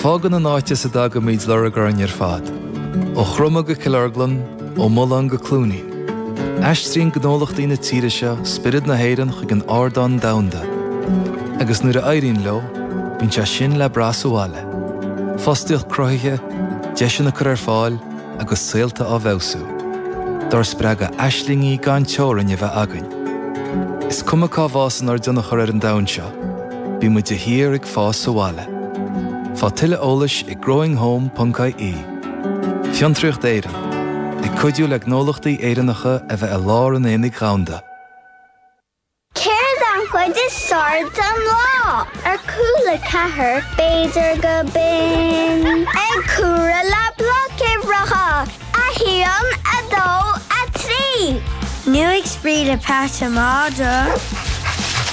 Fágann an áit as a dtagaimid lorg orainn ar fad. Ó Chromadh go Cill Orglan, ó Mullán go Cluainín. Aistríonn gnólachtaí na tíre seo spiorad na hÉireann chuig an ardán domhanda. Agus nuair a éiríonn leo, bíonn sé sin le brath sa bhaile. Fostaíocht cruthaithe, deiseanna curtha ar fáil agus saolta á bhfeabhsú. Dár spreagadh aislingí gan teorainn a bheith againn. Is cuma cá bhfásann ár dtionchar ar an domhan seo. Bímid de shíor ag fás sa bhaile. Faigh tuilleadh eolais ag growinghome.ie Fiontraíocht Éireann, ag cuidiú le gnólachtaí Éireannacha a bheith i lár an aonaigh dhomhanda. Céard an chuid is fearr den lá? Ar Cúla 4, b'fhéidir gurb in. Ag comhaireamh le bloic uimhreacha. 1, 2, 3. Nó ag spraoi le Pat an Madra.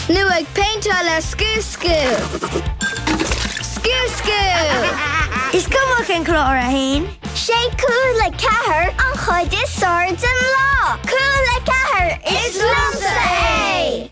Nó ag péinteáil le scooscú. Scooscú! Is cuma cén clár é féin. Sé Cúla ceathair an chuid is fearr den lá. Cúla ceathair, is liomsa é!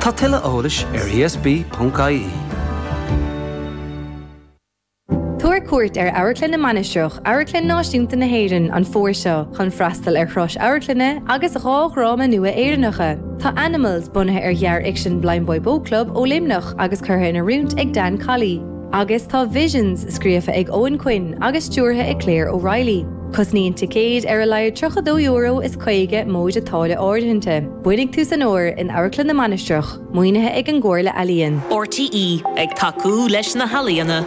Tá tuilleadh eolais ar ESB.ie. Tabhair cuairt ar Amharclann na Mainistreach, Amharclann Náisiúnta na hÉireann, an fómhar seo chun freastal ar thuras amharclainne agus dhá dhráma nua Éireannacha. Tá Animals, bunaithe ar ghearrfhicsean Blindboy Boatclub ó Luimneach agus curtha in oiriúint ag Dan Colley. Agus tá Visions scríofa ag Eoghan Quinn agus stiúrtha ag Claire O'Reilly. Cosnaíonn ticéid ar a laghad €32 is 50 móide táille áirithinte. Bainfidh tú san fhómhar in Amharclann na Mainistreach, maoinithe ag an gComhairle Ealaíon. RTÉ ag tacú leis na healaíona.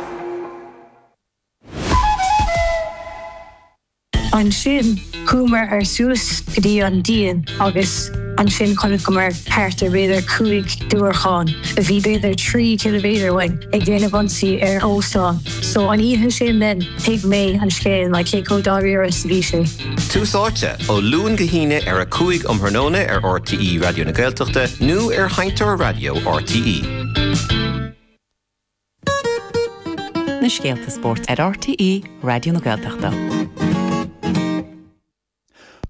Ansin chuamar ar suas go dtí an díon agus ansin chonaiceamar thart ar b'fhéidir cúig diúracán a bhí b'fhéidir trí chiliméadar uainn ag déanamh ionsaí ar óstán. So an oíche sin then thuig mé an scéal like cé chomh dáiríre is a bhí sé. Tús Áite, ó Luan go hAoine ar a 5 um thráthnóna ar RTÉ Raidió na Gaeltachta nó ar sheinnteoir raidió RTÉ. na scéalta spóirt ar RTÉ Raidió na Gaeltachta.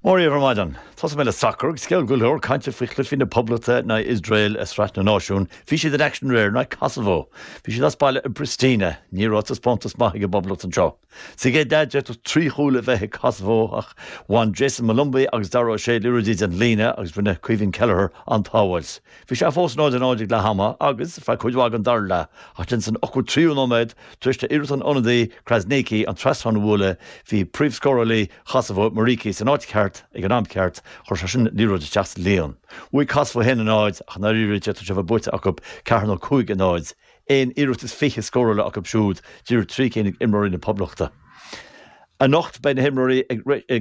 Mora dhaoibh ar maidin. Tosóidh mé le sacar agus scéal go leor cainte faoi chluichí na Poblachta in aghaidh Iosrael i Sraith na Náisiún. Bhí siad in action aréir in aghaidh Kosovo. Bhí siad as baile i bPristina. Ní raibh taispeántas maith ag an bPoblacht anseo. Sa chéad leath d'fhéadfadh trí chúl a bheith ag Kosovo ach bhain Jayson Molumby agus Dara O'Shea liathróidí den líne agus rinne Caoimhín Kelleher an-tsábháilt. Bhí sé fós 0 a 0 ag leath ama agus feadh cuid mhaith den dara leath ach then san ochtó tríú nóiméad tar éis d'iarracht an ionadaí Krasniqi an trasnán a bhualadh bhí príomhscórálaí Kosovo Muriqi san áit cheart ag an am ceart chuir seisean an liathróid isteach sa líon. Bhuaigh Kosovo 1 a 0 ach i ndáiríre d'fhéadfadh sé a bheith buaite acu 4 nó 5 a 0. Aon iarracht is fiche scórála acu siúd, díreach trí cinn ag imreoirí na Poblachta. Anocht beidh na himreoirí ag